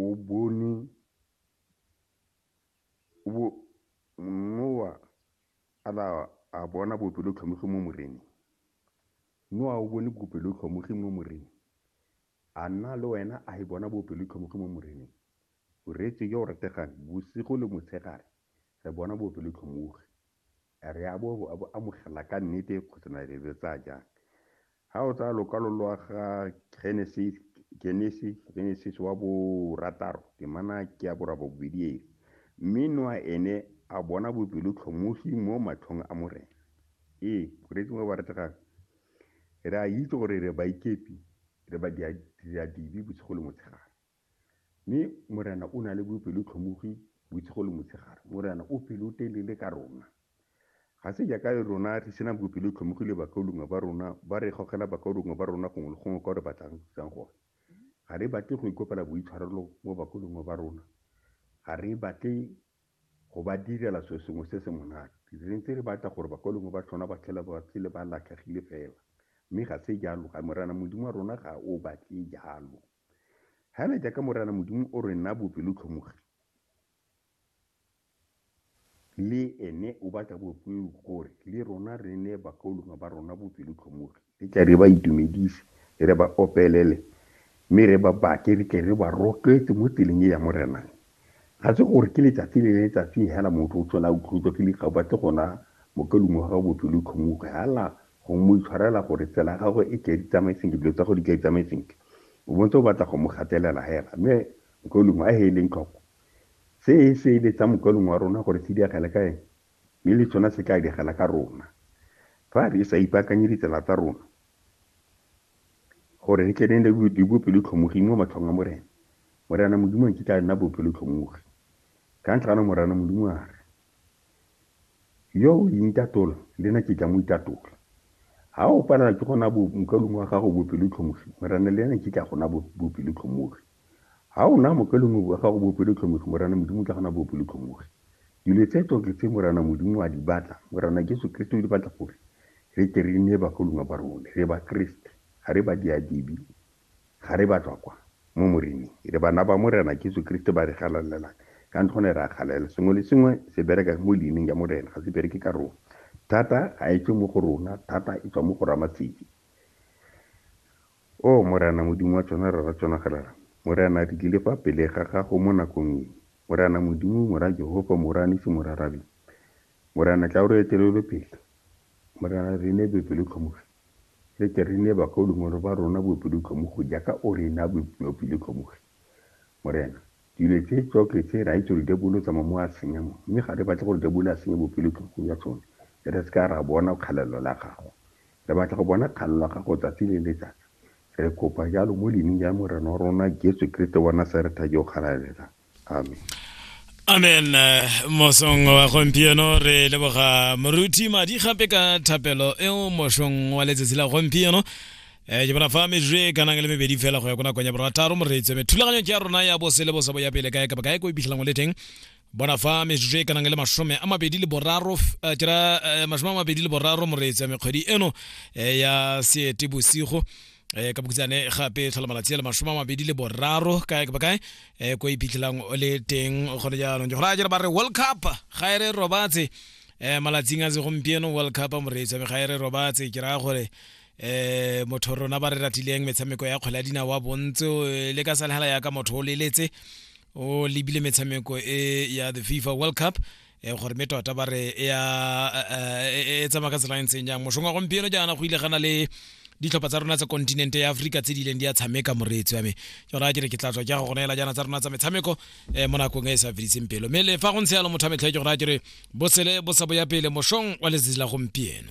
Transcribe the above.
o bone Noa a ba a bona bopelotlhomogi mo Moreneng. Noa o bone bopelotlhomogi mo Moreneng. A nna le wena a e bona bopelotlhomogi mo Moreneng? O reetswe yo o rategang, bosigo le motshegare re bona bopelotlhomogi. Re a bo amogela ka nnete kgotsa na re le tsaya jang? Ga o tsaya lokwalo lwa ga Genesis, Genesis wa borataro, temana ke ya borabobedi e re, Mme Noa ene a bona bopelotlhomogi mo matlhong a Morena. Ee, boreetsi mo baretegang, re a itse gore re baikepi, re badiadibe bosigo le motshegare. Mme Morena o na le bopelotlhomogi bosigo le motshegare. Morena o pelotelele ka rona. Ga se jaaka rona re sena bopelotlhomogi le bakaulengwe ba rona ba re gogela bakaulengwe ba rona gongwe le gongwe kwa re batlang go thusang gone. Ga re batle go ikopela boitshwarelo mo bakaulengwe ba rona. Ga re batle go ba direla selo sengwe se se monate. Re ntse re batla gore bakaulengwe ba tlhona ba tlhela ba phele ba latlhegile fela. Mme ga se jalo. Morena Modimo wa rona ga o batle jalo. Hana jaaka Morena Modimo o re naa bopelotlhomogi, le ene o batla bopelotlhomogi gore le rona re neye bakaulengwe ba rona bopelotlhomogi. Re tle re ba itumedise, re ba opelele, mme re ba batle, re tle re ba rotloetse mo tseleng e ya Morena. Ga se gore ke letsatsi le letsatsi hela motho o tlhola a utlwetswa ke dikgao, ba tle go naya mokaulengwe wa gago bopelotlhomogi, hala Go mo itshwarela gore tsela ya gagwe e tle e di tsamaye sentle, dilo tsa go di tle di tsamaye sentle. O bontse o batla go mo gatelela hela. Mme Mokaulengwe a he eleng tlhoko. Se e se ele tsa Mokaulengwe wa rona gore se diagele ka ene, mme le tsona se tla diagela ka rona. Fa re sa ipaakanye ditsela tsa rona gore re tle re nne le bopelotlhomogi mo matlhong a Morena, Morena Modimo nkitla a nna bopelotlhomogi. Ka ntlha ano Morena Modimo a re. Yo o intatola, le na ke tla mo itatola. Ha o palelwa ke gona bo mokalung wa gago bopelotlhomogi, Morena le ena ke tla gona bopelotlhomogi. Ha o na mokalung wa gago bopelotlhomogi, Morena Modimo tla gona bopelotlhomogi. Dilo tse tsotlhe tse Morena Modimo a di batla, Morena Jesu Kriste o di batla gore re tle re nne bakalunga ba rone, re ba Kriste, ga re ba diadibi. Ga re ba tswa kwa, mo Moreneng. Re bana ba Morena Jesu Keresete ba re galalelang. Ka ntlha gone re a galalela. Sengwe le sengwe se bereka mo leineng ya Morena, ga se bereke ka rona. Thata ga e tswe mo go rona, thata e tswa mo go Ramatseki. Oh, Morena Modimo wa tsona, Rara tsona galala. Morena, re tlile fa pele ga Gago mo nakong e. Morena Modimo, Mora Jehofa, Mora Nisi, Mora Rabi. Morena, tla o re etelele pele. Morena, re ne bopelo tlhomogi. Re tle re ne bakaulengwe ba rona boepilotlhomogi jaaka O re na boepilotlhomogi. Morena, dilo tse tsotlhe tse, re a itse gore diabolo o tsamaya mo a senya mo, mme ga re batle gore diabolo a senye boepilotlhomogi jwa tsone, mme re se ka ra bona kgalelo la Gago. Re batla go bona kgalelo la Gago tsatsi le letsatsi. Re kopa jalo mo Leineng la Morena wa rona Jesu Keresete wa Nasaretha yo o galalelang. amen amen eh, mosong wa gompieno re leboga moruti madi gape ka thapelo eo mosong wa letsatsi la gompieno eh, ke bona fa metsotso e kanang le mebedi fela go ya ko nakong ya borataro moreetso me thulaganyo ke ya rona ya bose le bosa bo ya pele kae kapa kae ko iphitlhelang o le teng bona fa metsotso e kanang le masome a mabedi le boraro f- eh, ke ra eh, masome a mabedi le boraro moreetso ya mekgwedi eno eh, ya seete bosigo eh ka bokutsane gape tlhola malatsi le mashome a mabedi le boraro kae ka bakae eh ko iphitlhelang o le teng o kgone jaanong gore a jere ba re world cup ga e re robatse eh malatsing a se gompieno world cup moreetsa me ga e re robatse ke raya gore eh motho rona ba re ratileng metshameko ya kgwele ya dina wa bontse eh, le ka salhala ya ka motho o leletse o lebile metshameko e ya the fifa world cup e gore mme tota ba re e, e, e tsamaya ka tsela e ntseng jang mosong wa gompieno jaana go ile gana le ditlhopha tsa rona tsa kontinente ya aforika tse di ileng di a tshameka moreetsi wa me ke raya ke re ke tla tswa ke go neela jaana tsa rona tsa metshameko um mo nakong e e sa fediseng pelo mme le fa go ntse yalo motho a metlhe ke go raya ke re bosele bo sa boya pele mosong wa letsatsi la gompieno